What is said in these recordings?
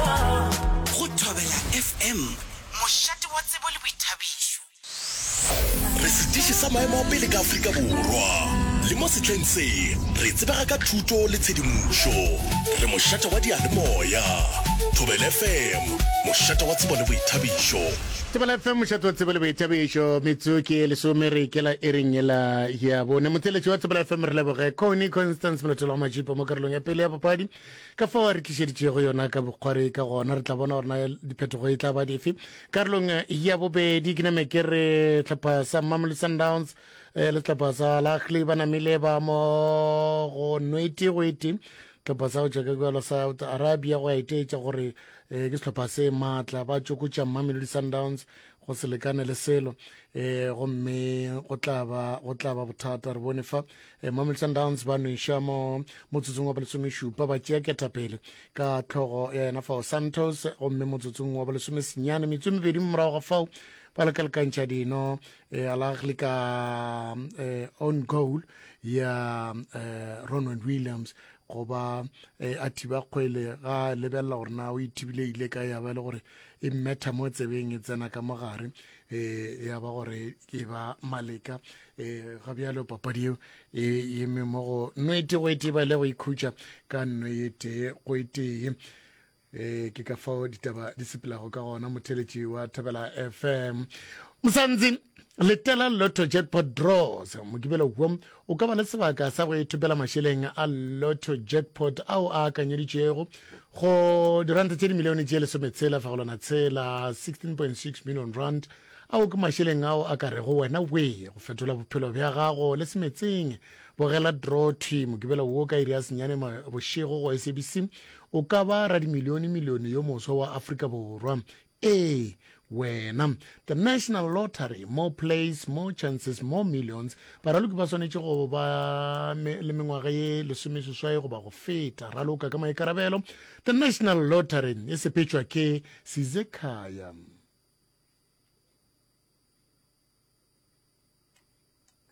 Go Thobela FM, mošate wa tsebo le boithabišo. Re setiši sa maemo a pele ka Afrika Borwa, le mo setleng se re tsebega ka thuto le tshedimošo. Re mošate wa diyalemoya. Thobela FM, mošate wa tsebo le boithabišo. Thobela FM, mošate wa tsebo le boithabišo. Metso ke lesome re ikela e reng ela ya bone. Motheletši wa Thobela FM re leboge Connie Constance Molotelwa Majipo mo karolong ya pele ya papadi. ka fao a re tlišeditšego yona ka bokgwari ka gona re tla bona gore na diphetogo e tla ba dife karolong ya bobedi ke name ke re tlhopha sa mamelo sundowns um le setlhopha sa lahle ba namile ba mo go nwete go ete setlhopha sa go tšwa ka kwalo south arabia go a eteetša gore um ke setlhopha se maatla ba tsokotša mamelodi sundowns go se lekane le selo um gomme go tlaba go tlaba bothata re bone fa um mamelton downs ba nweša mo motsotsong wa bolesomešupa ba tšea ketapele ka tlhogo ya yena fao santos gomme motsotsong wa bolesomesenyane metswe mebedi morago ga fao ba lekalekantšha dino um eh, alagli ka um on goal ya um ronald williams goba um a thiba kgwele ga lebelela gore na o ithibile ile ka ya ba e le gore e mmetha mo tsebeng e tsena ka mo gare um ya ba gore ke ba maleka um ga bjalo papadi eo e yeme mo go nwete go etee ba ile go ikhutša ka nno ye tee go etee um ke ka fao ditaba di sepelago ka gona motheletši wa thabela fm mosantsi letela lotto jackpot draws mokibelo wo O ka ba le sebaka sa go ithopela mašeleng a Lotto Jackpot ao a akanyeditšwego go diranta tše dimilione tše lesometshela fegolwana tshela, 16.6 million rand. Ao ke mašeleng ao a ka rego wena wee go fetola bophelo bja gago le semetseng. Bogela draw thwi Mokibelo wo ka iri ya senyane bošego go SABC. O ka ba radimilione-milione yo moswa wa Afrika Borwa. Ee, wena. The National Lottery, More plays, more chances, more millions. Baraloki ba swanetše go ba le mengwaga ye lesomeseswai goba go feta. Raloka ka maikarabelo. The National Lottery e sepetšwa ke Sizekhaya.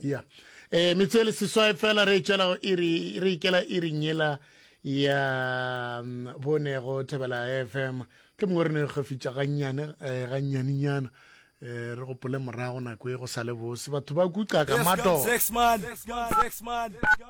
ya eh metse le seswae fela re tšela iri re ikela iri nyela ya mm, bonego thebela fm ke mongwe re ne re gafitša gannyane eh, gannyanenyana eh re gopole morago nako e go sa le bose batho ba kuca ka mato